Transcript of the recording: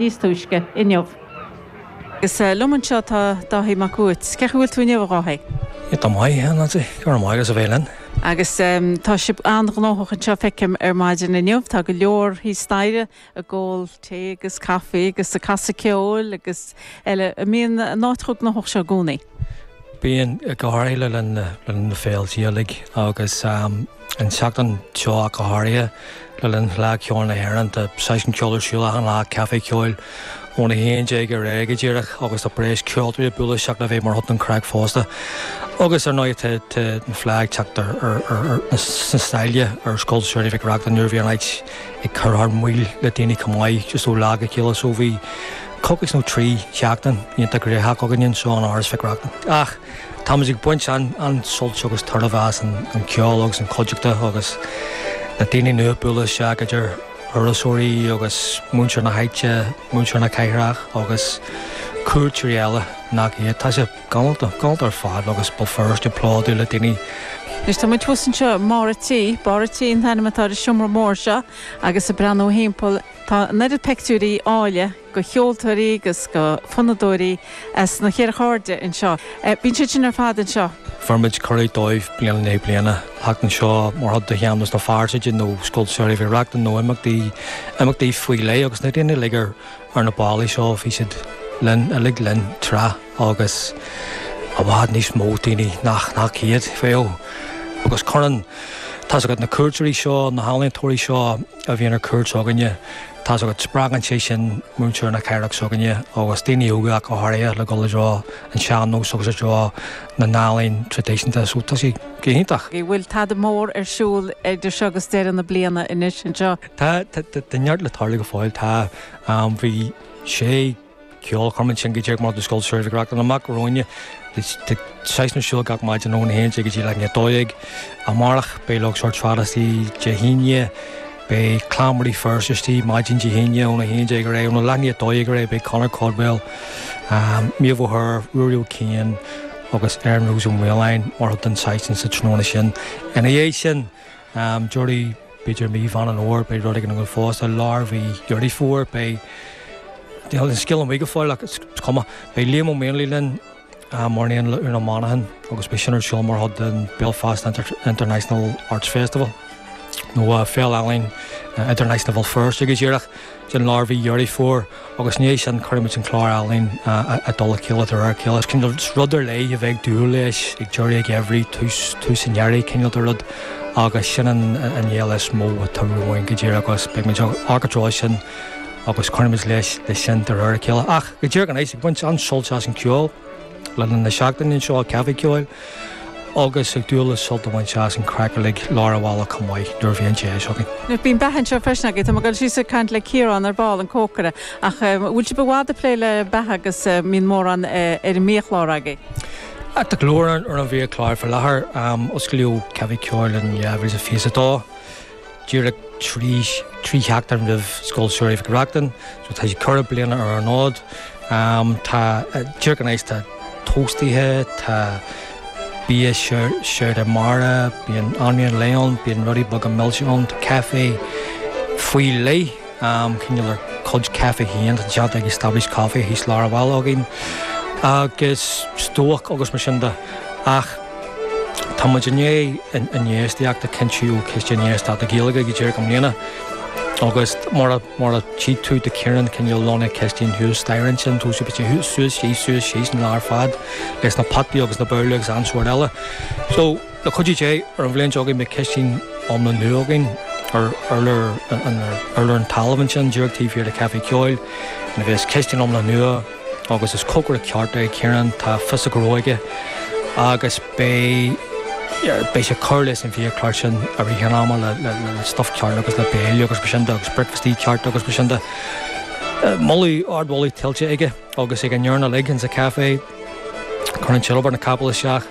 níos túisce inniu. Agus liom anseo tá Dáithí Mac Uait. Cén chaoi a bhfuil tú inniu, a Dháithí? Tá mé ar fheabhas. Go raibh maith agat, as bheith linn. Agus tá sibh an-ghnóthach anseo, feicim, ar maidin inniu. Tá go leor thíos staighre ag ól tae agus caife agus ag casadh ceoil agus eile. An mbíonn an áit chomh gnóthach seo i gcónaí? Bíonn, go háirithe le linn na féilte Gaeilge agus. An tseachtain seo ach go háirithe, le linn Fhleadh Cheoil na hÉireann, tá seisiún ceoil ar siúl achan lá, Caifé Ceoil ón 11 ar aghaidh go díreach agus tá breis ceoltóirí ag bualadh isteach le bheith mar chuid den chraic fosta. Agus ar ndóigh tá an Fleadh ag teacht sna sála ar Scoil Samhraidh Mhic Reachtain nuair a bhí an áit ag cur thar maoil le daoine chomh maith just ó lá go chéile so bhí coicís nó trí sheachtain iontach graitheach againn anseo in Áras Mhic Reachtain. Ach. Táimid ag baint an-suilt agus tairbhe as an ceol agus an chuideachta agus na daoine nua ag bualadh isteach idir thurasóirí agus muintir na háite, muintir na cathrach agus cuairteoirí eile nach iad. Tá sé galánta ar fad agus Béal Feirste plódaithe le daoine. Anois tá muid thuas anseo i mbarr a' tí. Barr a' tí an t-ainm atá ar an seomra mór seo agus ag breathnú timpeall tá an oiread peictiúirí áille, de cheoltóirí agus d'fhonnadóirí as na ceithre hairde anseo. Bíonn siad sin ar fad anseo. Bheirimid cuireadh dóibh bliain i ndiaidh bliana theacht anseo mar chuid de Shean-nós na Fearsaide nó Scoil Samhraidh Mhic Reachtain nó imeachtaí, imeachtaí faoi leith agus na daoine uilig ar, ar na ballaí seo bhí siad linn, uilig linn tráth agus i bhfad níos mó daoine nach, nach iad, feo agus cuireann, tá's agat na cuairteoirí seo, na healaíontóirí seo, a bhíonn ar cuairt s'againne, tá's agat, spreagann sé sin muintir na cathrach s'againne agus daoine óga ach go háirithe le dhul i dtreo an tsean-nóis agus i dtreo na n-ealaíon traidisiúnta so tá sé go hiontach. Bhfuil tada mór ar siúl idir seo agus deireadh na bliana anois anseo? Tá, tá neart le tarlú go fóill, tá, bhí sé. ceolchoirm ansin go díreach maidir le Scoil Samhraidh Mhic Reachtain amach romhainne. Beidh seisiún ar siúl gach maidin óna haon déag go dtí leath i ndiaidh a dó dhéag. Amárach beidh Glór Trad istigh Dé hAoine. Beidh Clann Mhuire Feirste istigh maidin Dé hAoine óna haon déag ar aghaidh. Óna leath i ndiaidh a dó dhéag ar aghaidh beidh Conor Caldwell, Méabh O'Hare, Ruairí Ó Cianáin agus Erin Rose Ó Maoláin mar chuid den seisiún sa tráthnóna sin. Ina dhiaidh sin deireadh, b'fhéidir, mí Mheán Fhómhair, beidh rud éigin againn fosta. I lár mhí Dheireadh Fómhair beidh, níl an scéal amuigh go fóill ach is cuma, beidh Liam Ó Maonlaí linn, mar aon le Úna Monaghan agus beidh sin ar siúl mar chuid den Belfast International Arts Festival nó Féile Ealaíon Idirnáisiúnta Bhéal Feirste go díreach. den lár mhí Dheireadh Fómhair agus ina dhiaidh sin cuirfimid an clár ealaíon i dtoll a chéile de réir a chéile. Cineál rud ar leith a bheith ag dúil leis, ag deireadh an gheimhridh, tús tús an earraigh cineál de rud agus sin an fhéile is mó atá romhainn go díreach agus beidh muid ag an trá sin agus cuirfimid leis sin de réir a chéile. Ach go díreach anois, ag baint an-sult as an gceol. Le linn na seachtaine anseo ag Caifé Ceoil agus ag dúil le sult a bhaint as an chraic uilig lár an bhaile chomh maith nuair a bhíonn deis againn. Bíonn beatha anseo freisin agaibh. Tá mé ag dul síos ag caint le Ciarán ar ball, an cócaire, ach an bhfuil sibh i bhfad ag plé le beatha agus an mbíonn mórán ar an mbiachlár agaibh? Tá go leor ar an bhiachlár faoi láthair. Osclaíodh Caifé Ceoil in 2022. díreach trí sheachtain roimh Scoil Samhraidh Mhic Reachtain, so tá sé ceithre bliana ar an fhód. Tá díreach anois, tá tóstaithe, tá bia seabhdar mara, bíonn anraith lae ann, bíonn rudaí beaga milse ann, tá caife faoi leith, cineál ár gcuid caife féin, atá déanta ag Established Coffee thíos lár an bhaile againn, agus stobhach agus mar sin de. Ach. Tá muid i ndiaidh an infheistíocht a chinntiú, Ciste Infheistíochta Gaeilge, go díreach i mbliana agus mar a chí tú tá Ciarán cineál lonnaithe i gcistin thuas staighre ansin, tógfaidh muid é thuas, suas, síos, suas, síos an lá ar fad leis na potaí agus na babhlaí agus achan sórt eile. So, le cuidiú Dé, ar an bhliain seo chugainn beidh cistin iomlán nua againn ar urlár an talaimh ansin, díreach taobh thiar de Caifé Ceoil, a bheas cistin iomlán nua, Agus is cócaire ceart é Ciarán, tá fios a ghnó aige agus beidh, beidh sé ag cur leis an bhia-chlár sin i rith an ama le, le, le, le stuff ceart agus le béile agus mar sin de agus bricfeastaí ceart agus mar sin de. Moladh, ard-mholadh tuillte aige agus ag an fhoireann uilig, ins a' café. Cuireann siad obair na gcapall isteach.